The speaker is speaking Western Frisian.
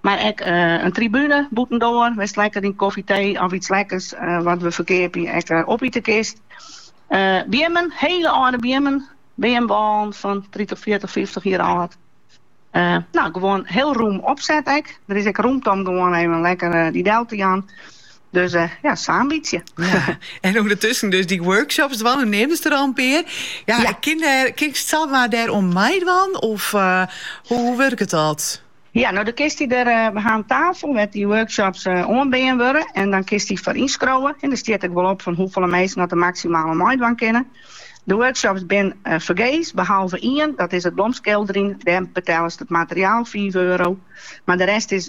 Mar ek in tribune bûtendoar wêr'tst lekker in kofje, tee of iets lekkers wat we ferkeapje ek opite kinst. Beammen, hele âlde beammen, beamwâlen fan tritich, fjirtich, fyftich jier âld. Nou, gewoan heel rûm opset ek. Der is ek rûmte om gewoan even lekker die del te jaan. Dus uh, ja, sa'n bytsje. Ja. En ûndertusken dus dy workshops dwaan, jo neamden der al in pear. Ja, ja. Kin, kinst samar dêr oan meidwaan? Of uh, hoe, hoe wurket dat? Ja, no dan kinst dy der, we ha in tafel wêr't dy workshops oanbean wurde en dan kinst dy foar ynskriuwe. En der stiet ek wol op fan hoefolle minsken dat der maksimaal oan meidwaan kinne. De workshops binne fergees, behalve ien, dat is it blomskilderjen, dêr betelst it materiaal fiif euro, mar de rest is.